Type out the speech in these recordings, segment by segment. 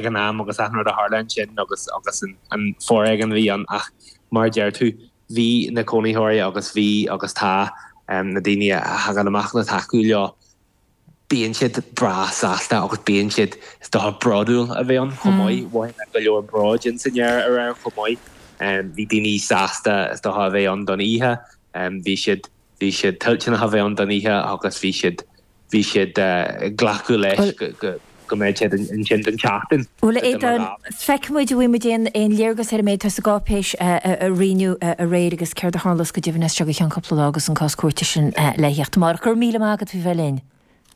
ag an am agus achan rud a tharla ansin agus an foréigean a bhí ann ach mar a deir tú, bhí na cónaitheoirí agus bhí agus tá na daoine a thagann amach le tacú leo, bíonn siad breá sásta agus bíonn siad, is dócha, bródúil a bheith ann chomh maith. Mhothaigh mé go leor bróid in san fhear aréir chomh maith. Bhí daoine sásta, is dócha, a bheith ann don oíche. Bhí siad, bhí siad toilteanach a bheith ann don oíche agus bhí siad, bhí siad ag glacadh leis go mbeadh siad ansin don tseachtain. Bhuel, a Aodán, feicfidh muid an bhfuil muid in ann léargas ar an méid atá sa gcáipéis a roinneadh aréir agus céard a tharlós go deimhin as seo go ceann cúpla lá agus an cás cúirte sin le theacht amárach. Go raibh míle maith agat faoi bheith linn.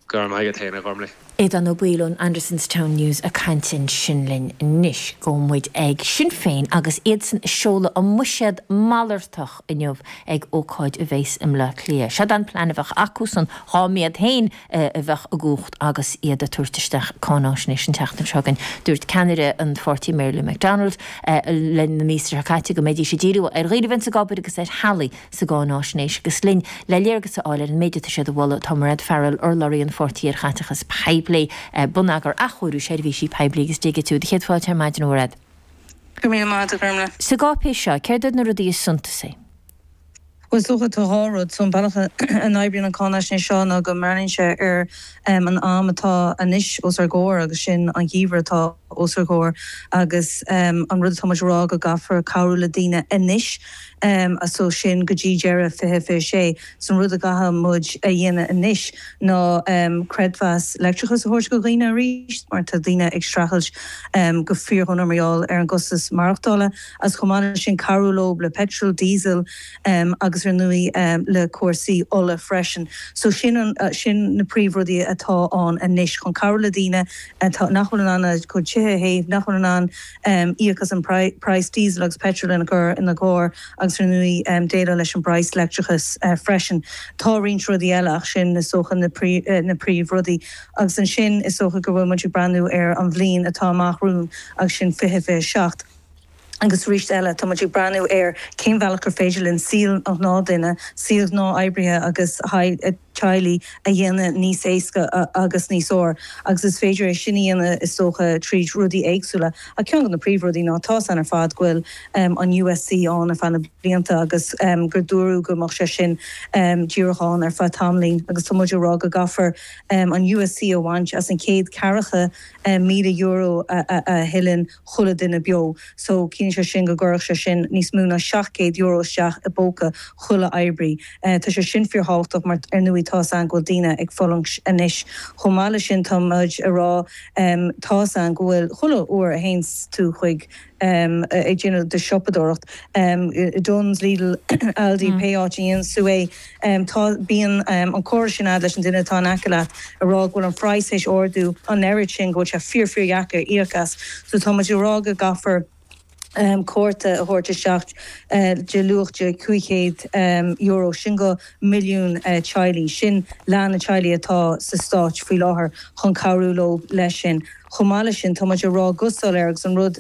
Go raibh maith agat féin, a Ghormfhlaith. Aodán Ó Baoill ón Andersonstown News ag caint ansin linn. Anois, gabhfaidh muid ag Sinn Féin agus iadsan ag seoladh a mbuiséad malartach. inniu ag ócáid a bheas i mBleá Cliath. Siod é an plean a bheadh acusan dhá mb'iad féin a bheadh i gcumhacht agus iad a' tabhairt isteach cáináisnéis an tseachtain seo againn. Dúirt ceannaire an pháirtí Mary Lou McDonald linn i lár na míosa seo caite go mbeidís a' díriú ar dhaoinibh ina bhfuil gábh air agus ar theaghlaigh sa gcáináisnéis agus linn le léargas a fháil ar an méid atá siad a mholadh tá Mairéad Farrell, urlabhraí an pháirtí ar chaiteachas poiblí, bonneagar, athchóiriú seirbhísí poiblí agus digitiú. Do chéad fáilte ar maidin a Mhairéad. Go raibh míle maith agat, a Ghormfhlaith. Sa gcáipéis seo, céard iad na rudaí is suntasaí? Bhuel is dócha tá dhá rud. So an bealach a n-oibríonn an cháinaisnéis seo ná go mbreathnaíonn sé ar an am atá anois os ár gcomhair agus sin an geimhreadh atá os ár gcomhair agus an rud atá muid a rá go gcaithfear cabhrú le daoine anois so sin go dtí deireadh 2026. 's an rud a gcaithfidh muid a dhéanamh anois ná creidmheas leictreachais a thabhairt go dhaoine arís mar tá daoine ag streachailt go fíordhona mar gheall ar an gcostas maireachtála agus chomh maith leis sin cabhrú leo le peitreal, diesel agus ar ndóigh le cúrsaí ola freisin. So sin sin na príomh rudaí atá ann anois chun cabhrú le daoine atá nach bhfuil in ann a gcuid tithe a théamh, nach bhfuil in ann. Íoc as an praghas Diesel agus Petrol ina gcur ina gcarr agus ar ndóigh déileáil leis an bpraghas leictreachais freisin. Tá roinnt rudaí eile ach sin is dócha na príomh rudaí. Agus ansin is dócha go bhfuil muid ag breathnú ar an bhliain atá amach romhainn agus sin fiche fiche a seacht. Agus arís eile tá muid ag breathnú ar cén bhealach gur féidir linn saol an ghnáth duine, saol ghnáth oibrithe agus a gcuid, teaghlaigh a dhéanamh níos éasca agus níos fearr agus is féidir é sin a dhéanamh is dócha tríd rudaí éagsúla ach ceann de na príomhrudaí ná tá a fhios againn ar fad go bhfuil an USC ann ar feadh na blianta agus gur dúradh go mbeadh sé sin díreach ann ar feadh tamaillín agus tá muid ag rá go gcaithfear an USC a bhaint as an chéad ceathracha míle euro a thuilleann chuile dhuine beo, so ciallaíonn sé sin go gcuirfeadh sé sin níos mó ná seacht gcéad euro isteach i bpóca chuile oibrí. Tá sé sin fíorthábhachtach mar ar ndóigh tá 's a'inn go bhfuil daoine ag fulaingt anois. Chomh maith leis sin tá muid a' rá tá 's a'inn go bhfuil chuile uair a théanns tú chuig ag déanamh do siopadóireacht, Dunnes, Lidl, Aldi, pé áit a dhéanfas tú é, Tá, bíonn an comhrá sin a'd leis an duine atá in aice leat ag rá go bhfuil an phraghas tar éis ardú an oiread sin go bhfuil sé fíor, fíordheacair íoc as. So tá muid ag rá go gcaithfear cárta a thabhairt isteach de luach €500, sin go milliún teaghlaigh, sin leath na teaghlaigh atá sa stát faoi láthair, chun cabhrú leo leis sin. Chomh maith leis sin, tá muid ag rá go soiléir agus an rud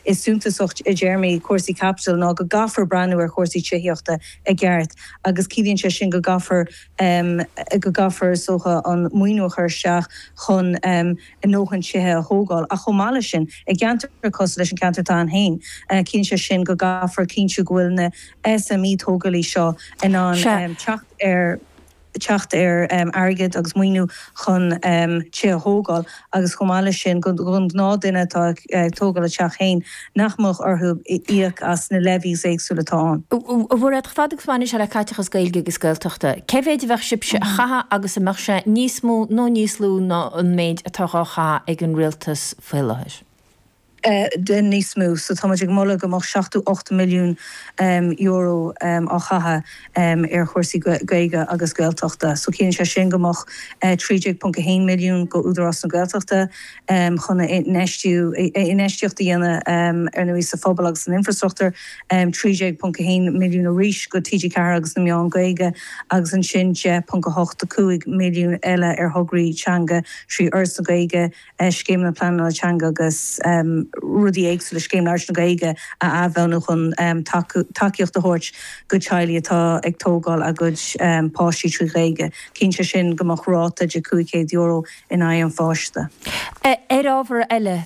is suntasaí i dtéarmaí cúrsaí caipitil ná go gcaithfear breathnú ar chúrsaí tithíochta i. i gceart, agus ciallaíonn sé sin go gcaithfear, go gcaithfear, is dócha, an maoiniú a chur isteach chun a ndóthain tithe a thógáil. Ach chomh maith leis sin, i gceantair cosúil leis an gceantar s'a'inn féin, ciallaíonn sé sin go gcaithfear cinntiú go bhfuil na SME tógálaí seo in ann teacht ar. teacht ar airgead agus maoiniú chun tithe a thógáil agus chomh maith leis sin gon ghnáthdhuine atá ag tógáil a teach féin nach mbeadh orthu íoc as na levies éagsúla atá ann. A Mhairéad, fad agus a bhaineann sé le caiteachas Gaeilge agus Gaeltachta, cé mhéid a bheadh sibhse a chaitheamh agus an mbeadh sé níos mó nó níos lú ná an méid atá dhá chaitheamh ag an rialtas faoi láthair? Bheadh níos mó. So tá muid ag moladh go mbeadh seachtó hocht milliún euro á chaitheamh ar chúrsaí Gaeilge agus Gaeltachta. So ciallaíonn sé sin go mbeadh 13.1 milliún go Údarás na Gaeltachta chun a infheistiú, infheistíocht a dhéanamh ar ndóigh sa phobal agus san infrastruchtúr, 13.1 milliún arís go TG4 agus na meáin Gaeilge agus ansin 10.85 milliún eile ar thograí teanga trí Fhoras na Gaeilge, scéimeanna pleanála teanga agus rudaí éagsúla, Scéim Labhairt na Gaeilge a athbhunú chun tacaíocht a thabhairt go teaghlaigh atá ag tógáil a gcuid páistí trí Ghaeilge. Ciallaíonn sé sin go mbeadh ráta de €500 in aghaidh an pháiste. Ar ábhar eile,